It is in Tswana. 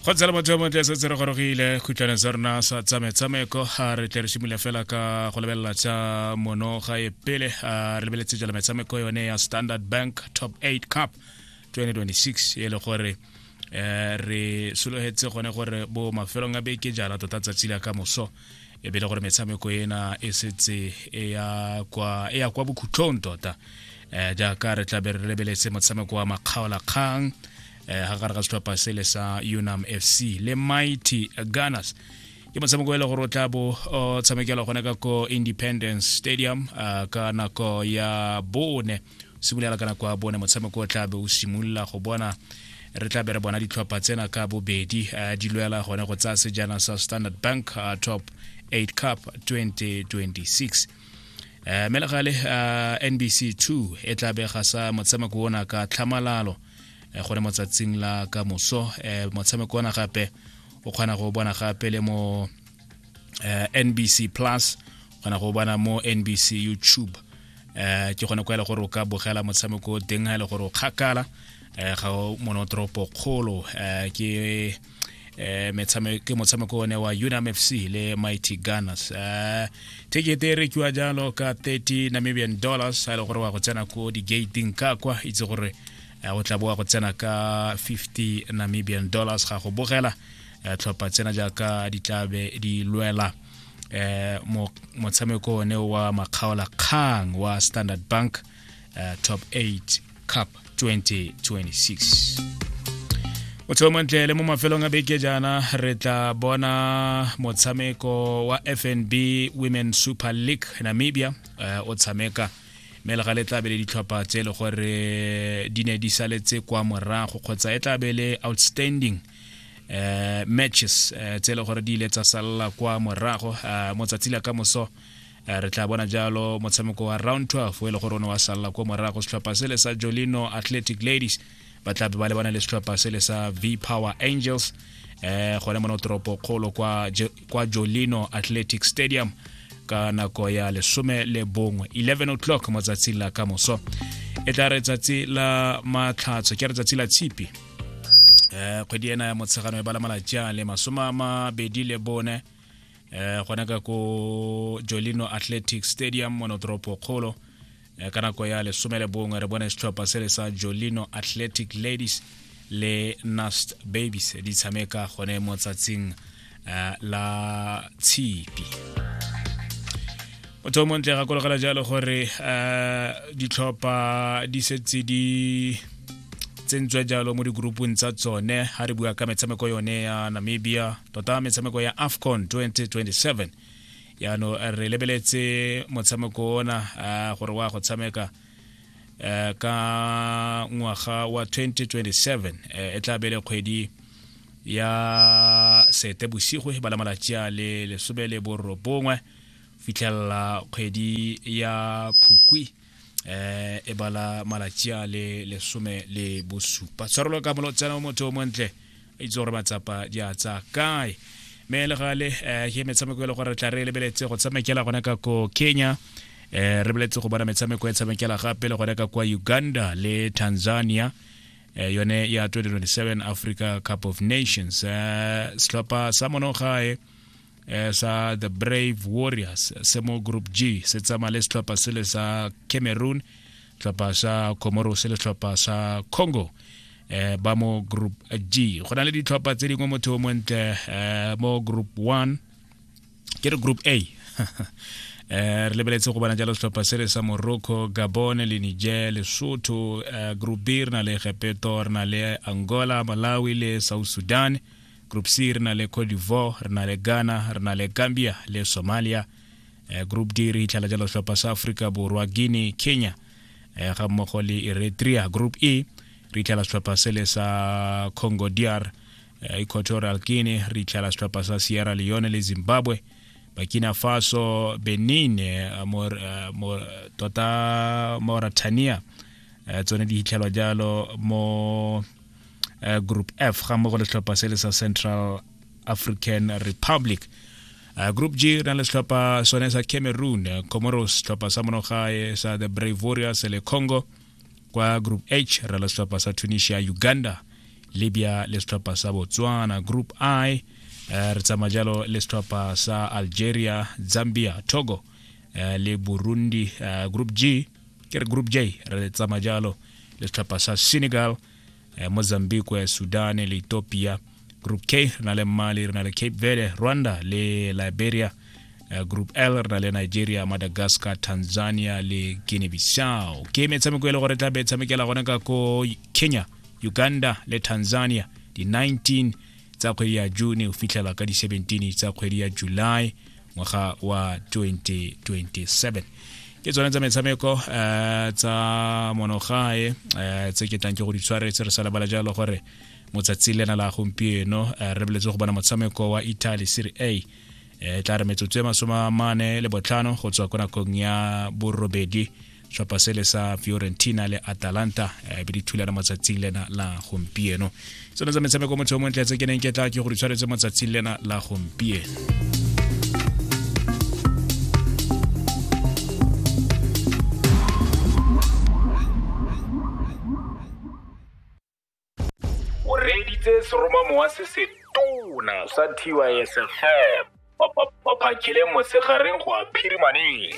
go tsela motho yo montle setse re gorogile khutlwane tsa rona sa tsametshameko re tle re simole fela ka go lebelela tsa mono ga e pele re lebeletse jala metshameko yone ya standard bank top 8 cup 2026 e le gore um re sologetse gone gore bo mafelong a beke jala tota tsatsi la ka moso e bile gore metshameko ena e setse e ya kwa bokhutlong tota um jaaka re tlabe re lebeletse motshameko wa makgaolakgang um eh, ga gare ga setlhopha sele sa unam f c le mighty gunners ke motshameko e le gore o tla bo o tshamekela gone ka ko independence stadium uh, ka nako ya bone se bulela ka nako ya bone motshameko o tlabe o simolola go bona re tla be re bona ditlhopha tsena ka bobedi eh, di lwela gone go tsaya sejana sa standard bank eh, top 8 cup 2026 eh, mme le gale nbc 2 e tla bega sa motshameko ona ka tlhamalalo gone mo tsatsing la ka moso motshameko ona gape o kgona go bona gape le mo uh, eh, nbc plus kgona go bona mo nbc youtube uh, ke kgone kwa e le gore o ka bogela motshameko o teng ga e le gore o kgakala uh, ga o monotoropo kgolo uh, ke eh ke motshameko one wa Unam FC le Mighty Gunners eh ticket e rekiwa jalo ka 30 Namibian dollars a le gore wa go tsena ko di gating ka kwa itse gore eh, o tla boa go tsena ka 50 Namibian dollars ga go bogela eh, tlhopha tsena jaaka di tlabe di lwela eh motshameko one wa makgaola kgang wa standard bank eh, top 8 cup 2026 motlhelo montle le mo mafelong a beke jaana re tla bona motshameko wa fnb women super league namibia eh, o tshameka mme le ga le tlabe le ditlhopha tse e le gore di ne di saletse kwa morago kgotsa e tlabe le outstanding eh matches eh, tse le gore di ile tsa salla kwa morago eh, mo tsatsi la ka moso eh, re tla bona jalo motshameko wa round 12 o e le gore o ne wa salla kwa morago setlhopha sele sa jolino athletic ladies ba tla be ba lebana le setlhopha sele sa v power angels eh gone mono toropo kgolo kwa, kwa jolino athletic stadium ka nako ya lesome le bongwe 11 o'clock mo tsatsing la ka moso e tla re tsatsi la matlhatso ke re tsatsi la tshipi eh kgwedi ena ya motshegano e bala malatsi a le masome a mabedi le bone eh gona ka ko jolino athletic stadium mo notoropo kgolo eh, ka nako ya lesome le bongwe re bone setlhopha se le sa jolino athletic ladies le nast babies di tshameka gone mo tsatsing uh, la tshipi motho o montle ga kologela jalo gore uh, ditlhopha di setse di tsentswe jalo mo digroupong tsa tsone ga re bua ka metshameko yone ya namibia tota metshameko ya afcon 2027 yaano re lebeletse motshameko ona gore wa go tshameka eh ka ngwaga wa 2027 eh, e tla bele kgwedi ya sete bosigo e bala malatsi a le lesome le borobongwe fitlhelela kgwedi ya phukwi eh e bala malatsi a le lesome le bosupa tshwarelo ka molotsana o motho o montle a itse gore matsapa di a tsa kae mme le gale um ke metshameko e le gore re tla re lebeletse go tshamekela gona ka ko kenya um re beletse go bona metshameko e tshamekela gape le gone ka kwa uganda le tanzania um yone ya 2027 africa cup of nations um setlhopha sa monogae um sa the brave warriors se mo group g se tsamaya le setlhopha sele sa cameroon tlhopha sa comoros le tlhopha sa congo eh, ba mo group g go na le ditlhopha tse dingwe motho o montle eh, mo group one ke re group a eh, re lebeletse go bona jalo setlhopha se re sa morocco gabone le niger lesotho eh, group b re na le gepeto re na le angola malawi le south sudan group c re na le cote d'ivoire re na le ghana re na le gambia le somalia eh, group d re itlhela jalo tlhopha sa aforika borwa guinea kenya eh, ga mmogo le eritrea group e re itlhela setlhopha sele sa congo dr eh, equatorial guinea re itlhela setlhopha sa sierra leone le zimbabwe bakina faso benin mor, mor, tota mauritania tsone di hitlhelwa jalo mo group f ga mmogo le setlhopha sele sa central african republic Uh, group g re na le setlhopha sone sa cameroon uh, comoros setlhopha sa monogae sa the brave warriors le congo kwa group h re le setlhopha sa tunisia uganda libya le setlhopha sa botswana group i uh, re tsamaya jalo le setlhopha sa algeria zambia togo uh, le burundi uh, group g ke re group j re tsamaya jalo le setlhopha sa senegal eh, mozambique eh, sudan le ethiopia group k re na le mali re na le cape verde rwanda le liberia eh, group l re na le nigeria madagascar tanzania le guinea bissau ke metshameko e le gore e tla be e tshamekela gone ka ko kenya uganda le tanzania di-19 tsa kgwedi ya june go fitlhela ka di-17 tsa kgwedi ya july ngwaga wa 2027 ke tsone tsa metshameko um tsa monogae um tse ke tlang ke go di tshwaretse re sa lebala jalo gore motsatsi lena la gompieno eh, re beletse go bona motshameko wa italy serie a e eh, tla re metsotso e masome a mane le botlhano go tswa ko nakong ya borobedi setlhopha sele sa fiorentina le atalanta eh, be di thulana motsatsing lena la gompieno tsone tsa metshameko motho o montle tse ke neng ke tla ke gore tshwanetse motsatsing lena la gompieno o reeditse seromamo wa se setona sa tysfm ba phakile mosegareng go a phirimaneng